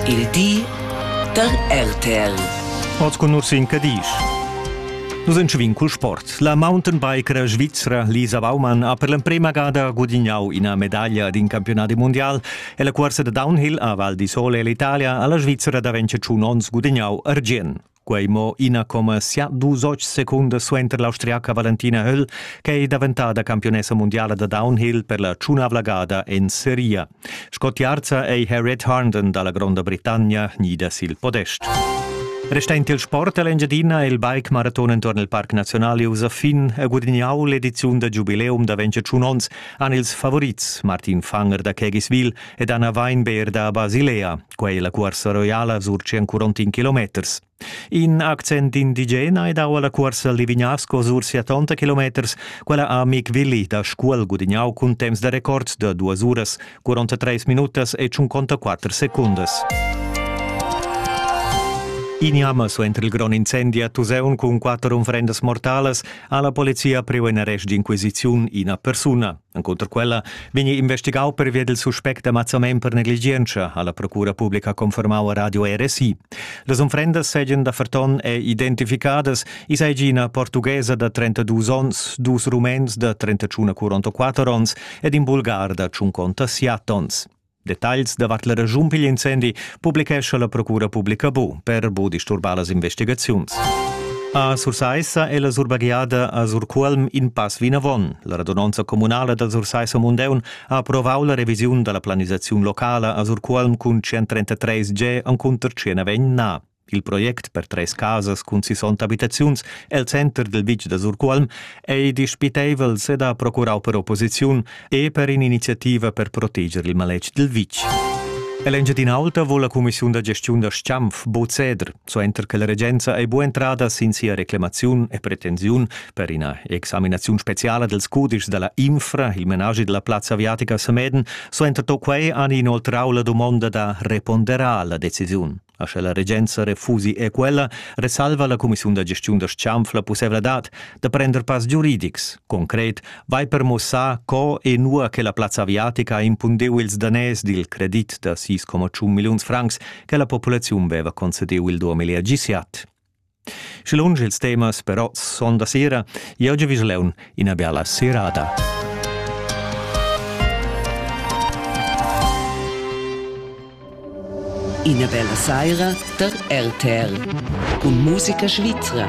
Il di da RTL. Oz cun nus in Cadisch. Nus entschevin cul sport. La mountainbiker svizra Lisa Baumann ha per l'emprema gada gudignau ina medaglia d'in campionat mundial e la cuorsa da downhill a Val di Sole l'Italia alla Svizzera da 25 onns gudignau argient. Quei mo ina comma sia dus oz secundas suenter l'austriaca Valentina Höll che è daventada campionessa mondiala da downhill per la tschunavla gada en seria. Sco tiarza ei Harriet Harnden dalla Gronda Britannia nida sil podest. Restend il sport all'Engiadina è il bike maraton intorno al Parc Nazionale usa fin e guadagnau l'ediziun da giubileum da 25 onns han ils favorits Martin Fanger da Kegiswil ed Anna Weinberg da Basilea. Quei la cuorsa roiala surci ancora in kilometers. In accent indigena è dau alla cuorsa Livignasco sur tonta kilometers, quella a Mick Willi da Scuol gudignau cun temps da record de duas uras, 43 minutas e 54 secundas. Ignam so entri il gron incendi a Tuseun cun quatter unfrendas mortalas alla polizia priu in arrest d'inquisiziun ina persuna. Encunter quella vegni investigau pervia dil suspect d'ammazzament per negligientscha, ha la procura publica confermau a Radio RSI. Las unfrendas seigien da Ferton è identificadas, i seigi ina portughesa da 32 onns, dus rumens da 31 44 onns ed in bulgar da 50 siat onns. Detagls davart la regiun pigl incendi publichescha la Procura Publica Bu per bu disturbar las investigaziuns. A Sursaissa è la surbagliada a Surcuolm in pass vinavon. La radunonza communala da Sursaissa Mundeun ha approvau la revisiun dalla planisaziun locala a Surcuolm cun 133 G encunter 109 na. Il project per treis casas cun sisonta abitaziuns el center del vitg da Surcuolm ei dispiteivel seda procurau per opposiziun e per in'iniziativa per proteger il maletg dil vitg. Ell'Engiadin'Alta vuol la cumissiun da gestiun da Stampf bod ceder, suenter che la regenza ei bu entrada sin sia reclamaziun e pretensiun per ina examinaziun speciala dels cudischs dalla Infra, il menage della plazza aviatica a Sameden, suenter to quei han inoltrau la domonda da reponderar la decisiun. A sche la regenza refusi e quella, resalva la cumissiun da gestiun da Schanf la pussevladad da prender pass giuridics. Concret vai per mossar co e nua che la plazza aviatica ha impundeu ils danès dil credit da 6,1 milliuns francs che la populaziun veva concediu il 2017. Sche lunsch ils temas però son da sera, jeu giu vis leun ina bella serada. Ina bella saira der RTR. Cun musica svizra.